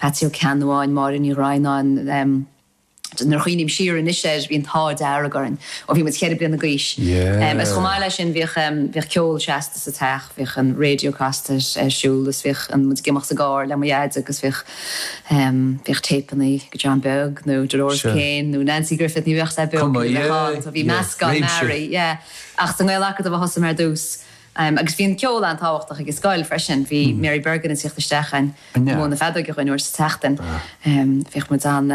Peatsaí Ó Ceannabháin, Máire Uí Dhroighneáin, nuair a chuimhním siar anois air, bhí an t-ádh dearg orainn ó bhí muid ceithre bliana d'aois. Agus chomh maith leis sin, bhíodh ceol seasta sa teach, bhíodh an radio casta ar siúl agus bhíodh muid ag imeacht sa gcarr le mo dhaid agus bhíodh téipeanna John Beag nó Dolores Keane nó Nanci Griffith, ní bhíodh siad beo, bhí meascán mearaí. Ach sa nGael-Acadamh a thosaigh mé ar dtús. Agus bhí an ceol an-tábhachtach ag an scoil freisin. Bhí Mary Bergin ag teacht isteach ag múineadh na feadóige dhúinn uair sa tseachtain. Bhíodh muid ann,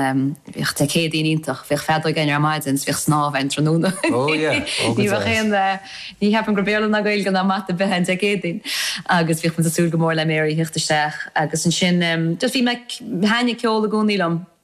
bhíodh Dé Céadaoin iontach, bhíodh feadóig againn ar maidin is bhíodh snámh againn tráthnóna. Ní bheadh aon, ní cheapaim gur Béarla ná Gaeilge ná Mata a bheadh ann Dé Céadaoin. Agus bhíodh muid ag súil go mór le Mary a theacht isteach. Agus ansin, just bhí mé ag, thaitnigh ceol i gcónaí liom.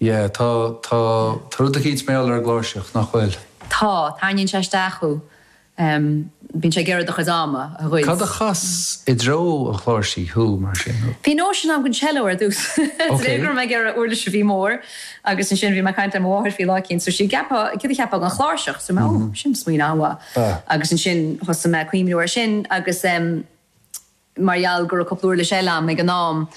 Yeah, tá, tá, tá rud eicínt mealltach ar an gcláirseach, nach bhfuil? Tá, tarraingíonn sé isteach thú. em, bíonn sé ag iarraidh do chuid ama a ghoid. Cad a chas i dtreo an chláirsí thú, mar sin, nó? Bhí nóisean agam don cello ar dtús, de réir go raibh mé ag iarraidh uirlis a bhí mór agus ansin bhí mé ag caint le mo mháthair faoi lá eicínt dúirt sí céard a cheapfá den chláirseach? Dúirt mé, oh, sin smaoineamh an-mhaith. Agus ansin thosaigh mé ag cuimhniú ar sin agus em, mar gheall go raibh cúpla uirlis eile agam ag an am,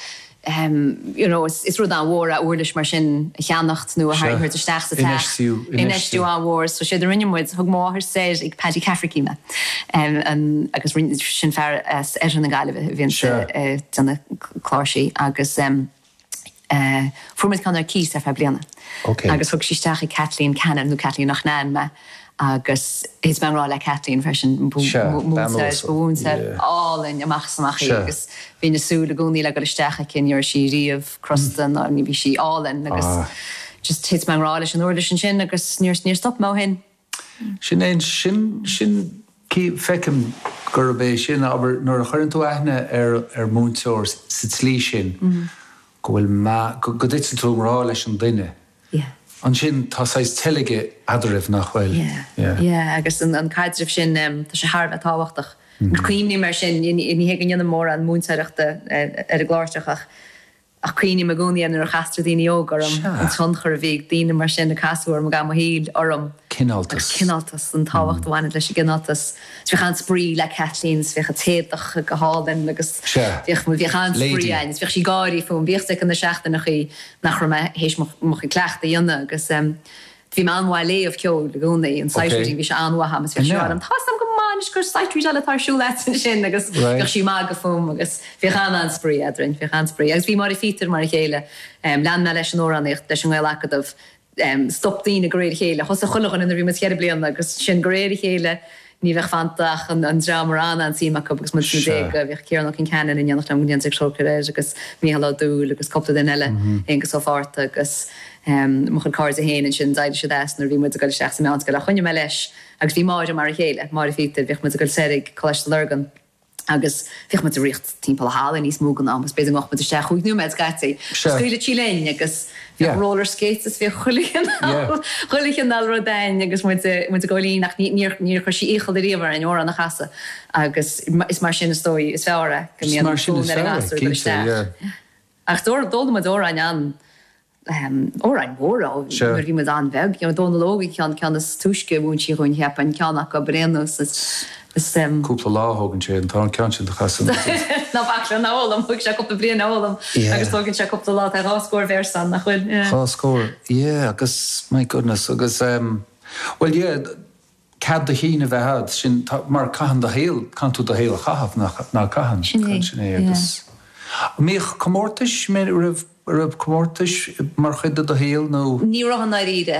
you know, is rud an-mhór é uirlis mar sin a cheannacht nó a thabhairt isteach sa teach, infheistiú an-mhór, so séard a rinne muid, thug mo mháthair soir ag Paddy Cafferky mé, agus sin fear as oirthear na Gaillimhe a bhíonn ag déanamh cláirsí agus. Fuair muid ceann ar cíos ar feadh bliana agus thug sí isteach ag Kathleen Cannon, nó Kathleen Loughnane mé, agus thit mé i ngrá le Kathleen freisin, múinteoir múinteoir álainn amach is amach í agus bhínn ag súil i gcónaí le dul isteach aici, ní raibh sí riamh crosta ná ní bhí sí álainn agus just thit mé i ngrá leis an uirlis ansin agus níor stop mé ó shin. Sin é, sin, sin, feicim gurb é sin, abair, nuair a chuireann tú aithne ar, ar mhúinteoir sa tslí sin, go bhfuil meas, go, go dtiteann tú i ngrá leis an duine, ansin tá saghas teilge eadraibh, nach bhfuil? Yeah, yeah, agus an, an caidreamh sin, tá sé thar a bheith tábhachtach. Cuimhním air sin, ní hé go ndéanaim mórán múinteoireachta ar an gcláirseach ach Ach cuimhním i gcónaí ar nuair a chastar daoine óga orm, an tionchar a bhí ag daoine mar sin a casadh orm i gcaitheamh mo shaoil orm. Cineáltas. Agus cineáltas, an tábhacht a bhaineann leis an gcineáltas. Bhíodh an-spraoi le Kathleen is bhíodh an t-éadach go hálainn agus bhíodh, bhuel bhíodh an-spraoi ann is bhíodh sí ag gáirí fúm. Bhíodh a fhios aici na seachtannachaí nach raibh mé théis mo chuid cleachtaidh a dhéanamh agus Bhí mé an-mhaith ag léamh ceoil i gcónaí, an sight reading, bhí sé an-mhaith agam is bhíodh sí, tá a fhios agam go maith anois gur sight readáil atá ar siúl agat ansin agus bhíodh sí ag magadh fúm agus bhíodh an-spraoi eadrainn, bhíodh an-spraoi agus bhí Máire Phíotair mar a chéile, lean mé leis an amhránaíocht leis an nGaelacadamh, stop daoine de réir a chéile, thosaigh chuile dhuine nuair a bhí muid cheithre bliana agus sin de réir a chéile, ní bheadh fanta ach an dream a raibh an-suim acu agus muid sna déaga. Bhíodh Ciarán Ó Concheanainn in éineacht liom go ndéantar trócaire air agus Micheál Ó Dúill agus cúpla duine eile, Aonghus Ó Fátharta agus mo chuid cairde féin ansin, d'éirigh siad as nuair a bhí muid ag goil isteach sa mheánscoil ach choinnigh mé leis agus bhí Máire mar a chéile, Máire Phíotair, bhíodh muid ag goil soir go Coláiste Lurgan. agus bhíodh muid ag riocht timpeall an halla níos mó den am agus b'fhéidir go ngabhfadh muid isteach chúig nóiméad scaití. Sure. Scaoileadh sí linn agus bhíodh Yeah. roller skates is bhíodh chuile Yeah. chineál, chuile chineál rud againn agus muid, muid ag gabháil fhoinn ach ní, níor, níor chuir sí iachall ariamh orainn amhrán a chasadh agus is mar sin is dóigh is fearr é, go Is mbíonn mar sin fonn is ar an fearr é, gasúr dul cinnte, isteach. yeah. Ach d'fhoghlaim muid amhráin ann, Árainn Mhór nuair a bhí muid an-bheag. Dónall Óg an chéad cheann is túisce a mhúin sí dhúinn, cheapfainn, ceann acu ab bréan is. cúpla lá a thógann sé an tarna ceann sin do chasadh na dtrí. Ná bac leis a fhoghlaim, thóig sé cúpla bliain a fhoghlaim agus tógann sé cúpla lá, tá dhá scór véarsa ann, nach bhfuil? Dhá scór, yeah, agus my goodness, agus, bhuel, yeah, cead do chinn a bheith a'd, sin, tá, mar caitheann tú do shaol, caitheann tú do shaol a chaitheamh, nach, ná caitheann? Sin é, Sin é agus yeah. An mbíodh comórtais, raibh, raibh comórtais mar chuid de do shaol nó? Ní raibh i ndáiríre.